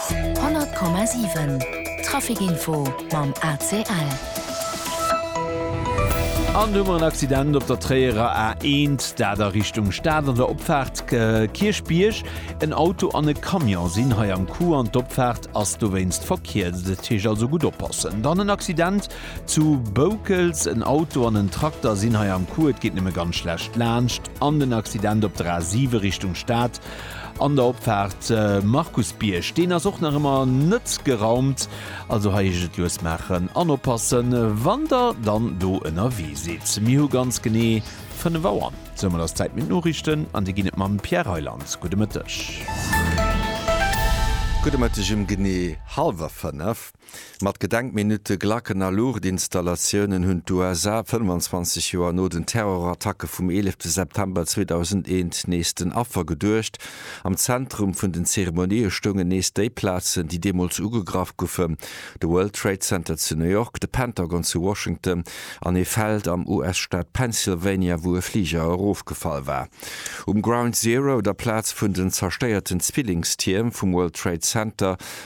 100,7 Trafic info mam ACL. An do hu mer en Accident op der Tréierer A1, dat a Richtung Stad an der Opfaart Kierchbierg. En Auto an e Camion sinn hei am Coup an d'Opfaart ass dowéinst verkierzt. Dat heescht also gutt oppassen. Dann en Accident zu Boukels, en Auto an en Trakter sinn hei am Coup, et geet nëmme ganz schlecht laanscht. An den Accident op der A7 Richtung Stad. An der Opfaart Markusbierg, deen ass och nach ëmmer net geraumt, also hei heescht et lues maachen an oppassen, wann der dann do ënnerwee sidd. Mir hu ganz genee 5 Auer. Soumat ass d'Zäit fir d'Noriichten an déi ginn et mam Pierre Reyland. Gudde Mëtteg. Gudde Mëtteg um genee hallwer 5. Mat Gedenkminutte, Glacken a Luuchtinstallatiounen hunn d'USA 25 Joer no den Terrorattacke vum 11 September 2001 nees den Affer geduecht. Am Zentrum vun den Zeremonië stoungen nees déi Plazen, déi deemools ugegraff goufen, de World Trade Center zu New York, de Pentagon zu Washington an ee Feld am US-Staat Pennsylvania, wou e Fliger erofgefall war. Um Ground Zero, der Plaz vun den zerstéierten Zwillingstierm vum World Trade Center,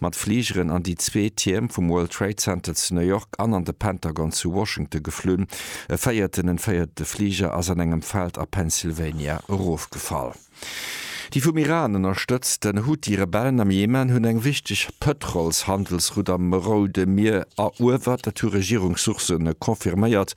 mat Fligeren an déi zwee Tierm vum World Trade Center zu New York an an de Pentagon zu Washington geflunn. E véierten, en véierte Fliger ass an engem Feld a Pennsylvania erofgefall. Déi vum Iran ënnerstëtzten Huthi-Rebellen am Jemen hunn eng wichteg Pëtrolshandelsroute am Roude Mier eruewert, dat hu Regierungssourcë confirméiert.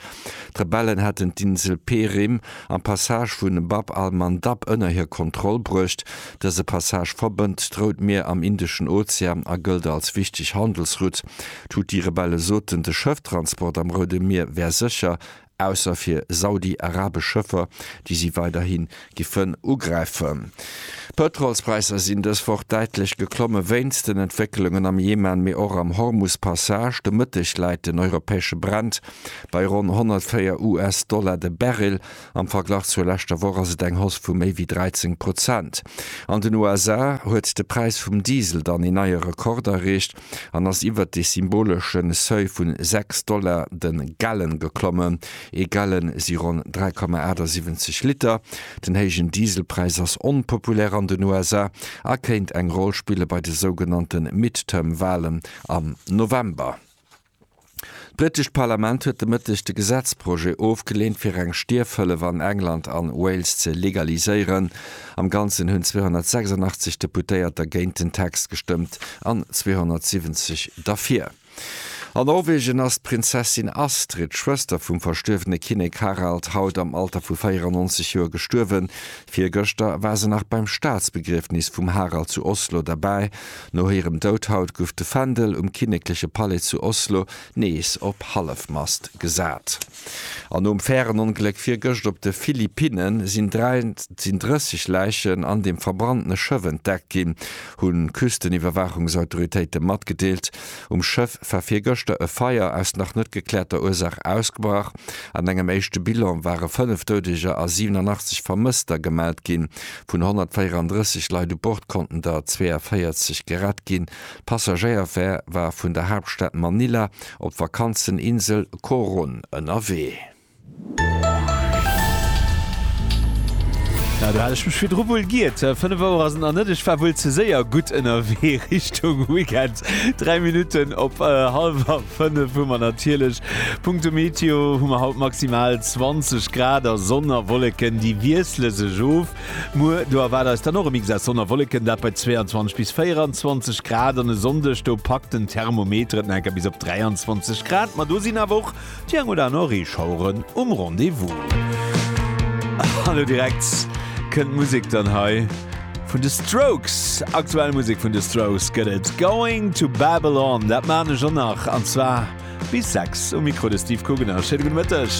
D'Rebellen hätten d'Insel Perim am Passage vu Bab al-Mandab ënner hir Kontroll bruecht. Dëse Passage verbënnt d'Rout Mier am Indeschen Ozean a gëllt als wichteg Handelsroute. D'Huthi-Rebelle soten, de Schëfftransport am Roude Mier wär sécher, ausser fir saudi-arabesch Schëffer, déi si weiderhi giffen ugräifen. D'Pëtrolspräisser sinn dës Woch däitlech geklomme wéinst den Entwécklungen am Jemen, mee och am Hormus-Passage. De Mëtteg läit den europäesche Brent bei ronn 104 US-Dollar de Barrel. Am Verglach zur leschter Woch ass et eng Hausse vu méi wéi 13 Prozent. An den USA huet de Präis vum Diesel dann een neie Rekord erreecht an ass iwwert de symbolesche Seuil vu 6 Dollar de Gallon geklommen. Ee Gallon si ronn 3,78 Liter. Den héijen Dieselpräis ass onpopulär an den USA a kéint eng Roll spille bei de sougenannte Midterm-Walen am November. D'britescht Parlament huet de Mëtteg de Gesetzprojet ofgeleent, fir eng Stierfhëllef an England an Wales ze legaliséieren. Am Ganzen hunn 286 Deputéierter géint den Text gestëmmt an 270 derfir. An Norwegen ass d'Prinzessin Astrid, Schwëster vum verstuerwene Kinnek Harald, haut am Alter vu 94 Joer gestuerwen. Virgëschter war se nach beim Staatsbegriefnis vum Harald zu Oslo derbäi. No hirem Doud haut guff de Fändel um kinnekleche Palais zu Oslo nees op Hallefmast gesat. An nom Färenongléck virgëscht op de Philippinnen sinn 33 Läichen an dem verbrannene Schëff entdeckt ginn, hunn d'Küsteniwwerwaachungsautoritéite matgedeelt. Um Schëff war virgëschter e Feier aus nach net gekläerter Ursaach ausgebrach. An engem éischte Bilan ware 5 Doudeger a 87 Vermësster gemellt ginn. Vun 134 Leit u Bord konnten der 42 gerett ginn. D'Passagéierfär war vun der Haaptstad Manila op d'Vakanzeninsel Coron ënnerwee. Ja, do hat ech mech virdru wuel giert. Fënnef Auer ass et nach net, ech war wuel ze séier gutt ënnerwee Richtung Weekend. Dräi Minutten op hallwer fënnef hu mer natierlech. Punkto Meteo hu mer haut maximal 20 Grad a Sonn a Wolleken, déi wiessle sech of. Muer do erwaart eis dann och e Mix aus Sonn a Wolleken, dat bei 22 bis 24 Grad. An e Sonndeg, do packt den Thermometer et nach enker bis op 23 Grad. Ma do sinn awer och Déi eng oder aner Reeschaueren um Rendez-vous. An lo direkt kënnt Musek dann hei vun de Strokes. Aktuell Musek vun de Strokes gëtt et Going to Babylon. Dat maan ech och nach an zwar bis 6 um Mikro de Steve Kugener. Schéine gudde Mëtteg.